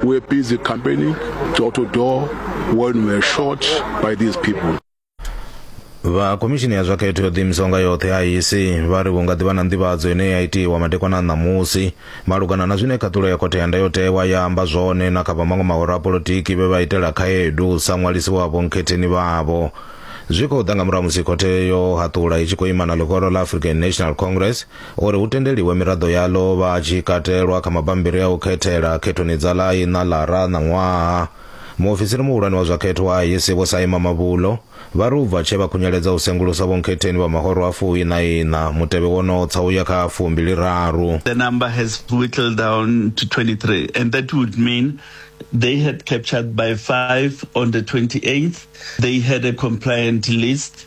We were busy campaigning door to door when we were shot by these people. vha khomishini ya zwa khetho yo ḓiimisaho nga yoṱhe IEC vha ri hu nga ḓivha na nḓivhadzo ine ya itiwa madekwana a ṋamusi malugana na zwine khaṱulo ya khothe ya ndayotewa ya amba zwone na kha vha maṅwe mahoro a polotiki vhe vha itela khaedu sa ṅwalisi wa vhonkhetheni vhavho zwi khou ḓa nga murahu musi khothe yo haṱula i tshi khou ima na ḽihoro ḽa african national congress uri hu tendeliwe miraḓo yaḽo vha tshi katelwa kha mabambiri a u khethela khethoni dza ḽa iṋa ḽara na ṅwaha. Muofisiri muhulwane wa zwa khetho wa IEC Vho Saima Mabulo vha ri u bva tshe vha khunyeledza u sengulusa vhonkhetheni vha mahoro a fu iṋa iṋa, mutevhe wo no tsa u ya kha a fu mbili raru. The number has whittled down to 23 and that would mean they had captured by 5 on the 28th, they had a compliant list.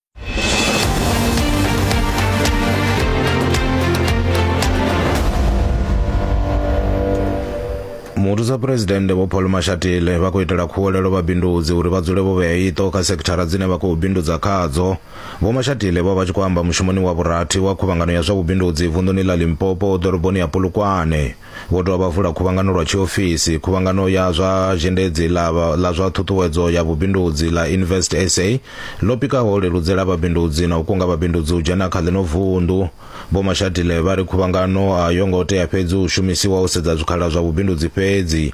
muvhusa phuresidennde vho paul mashatile vha khou itela khuwelelo vhabindudzi uri vha dzule vho vhea iṱo kha sekithara dzine vha khou bindudza khadzo vho mashatile vho vha tshi khou amba mushumoni wa vhurathi wa khuvhangano ya zwa vhubindudzi vunḓuni ḽa limpopo ḓoroboni ya polokwane Vho dovha vha vula khuvhangano lwa tshiofisi, khuvhangano ya zwa zhendedzi ḽa ḽa zwa ṱhuṱhuwedzo ya vhubindudzi ḽa Invest SA, ḽo pikaho u leludzela vhabindudzi na u kunga vhabindudzi u dzhena kha ḽino vunḓu. Vho Mashatile vha ri khuvhangano a yo ngo tea fhedzi u shumisiwa u sedza zwikhala zwa vhubindudzi fhedzi,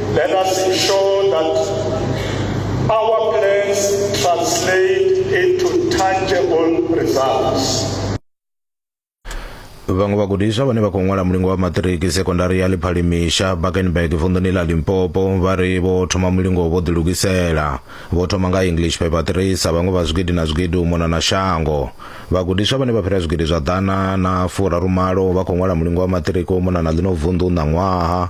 Let us ensure that our plans translate into tangible results. vhaṅwe vhagudiswa vhane vha khou ṅwala mulingo wa maṱiriki sekondari ya ḽiphali misha bakenberg vunḓuni ḽa limpopo vha ri vho thoma mulingo vho ḓilugisela vho thoma nga english paper 3 sa vhaṅwe vha zwigidi na zwigidi u mona na shango vhagudiswa vhane vha fhira zwigidi zwa ḓana na furarumalo vha khou ṅwala mulingo wa maṱiriki u mona na ḽino vunḓu ṋaṅwaha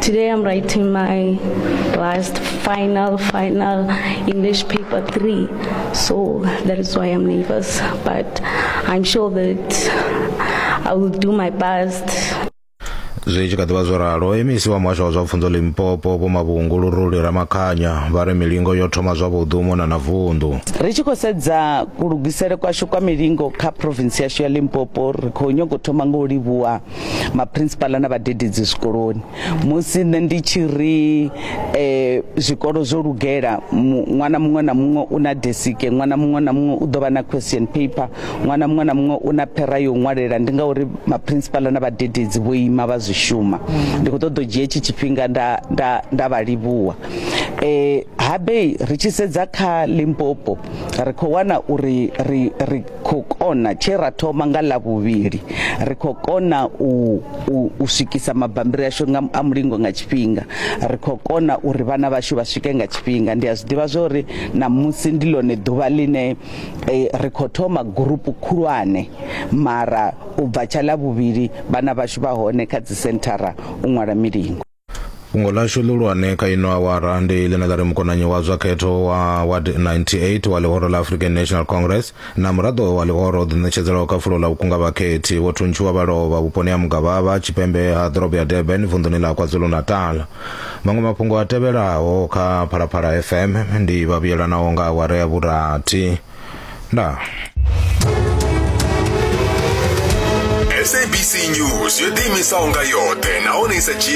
Today I'm writing my last final, final English paper three. So that is why I'm nervous. But I'm sure that I will do my best. zwi tshi kha ḓivha zwo ralo emisi wa muhasho wa zwa pfunzo limpopo vho mavhungu luruli ramakhanya vha ri milingo yo thoma zwavhuḓi u mona na vunḓu ri tshi khou sedza kulugisele kwashu kwa milingo kha provinsi yashu ya limpopo ri khou nyago thoma nga u livhuwa maprinsipala na vhadededzi zwikoloni musi nṋe ndi tshi ri eh, zwikolo zwo lugela ṅwana muṅwe na muṅwe u na desike ṅwana muṅwe na muṅwe u ḓo vha na question paper ṅwana muṅwe na muṅwe u na phera yo ṅwalela ndi ngauri maprinsipala na vhadededzi vho ima vha zwi shuma ndi khou ṱoḓa u dzhia etshi tshifhinga nda, nda, nda vha livhuwa eh, habe ri tshi sedza kha limpopo ri khou wana uri ri, ri khou kona tshe ra thoma nga ḽa vhuvhili ri khou kona u u swikisa mabambiri ashu nga a mulingo nga tshifhinga ri khou kona uri vhana vhashu vha swike nga tshifhinga ndi a zwi ḓivha zwa uri na musi ndi lone ḓuvha ḽine e, ri khou thoma gurupu khulwane mara u bva tsha ḽa vhuvhili vhana vhashu vha hone kha dzi senthara u ṅwala milingo fhungo ḽashu ḽihulwane kha ino awara ndi ḽine ḽa ri mukonanyi wa zwa khetho wa ward 98 wa ḽihoro ḽa african national congress na muraḓo wa ḽihoro o ḓiṋetshedzelaho kha fulo ḽa vhukunga vhakhethi vho thuntshiwa vha lovha vhuponi ha mugavhava tshipembe ha ḓorobo ya durban vunḓuni ḽa kwazulu-natal maṅwe mafhungo a tevhelaho kha phalaphala fm ndi vhavhuyelanaho nga awara ya vhurathi ndaa sabc news yo ḓiimisaho nga yoṱhe nahone i sa dzhii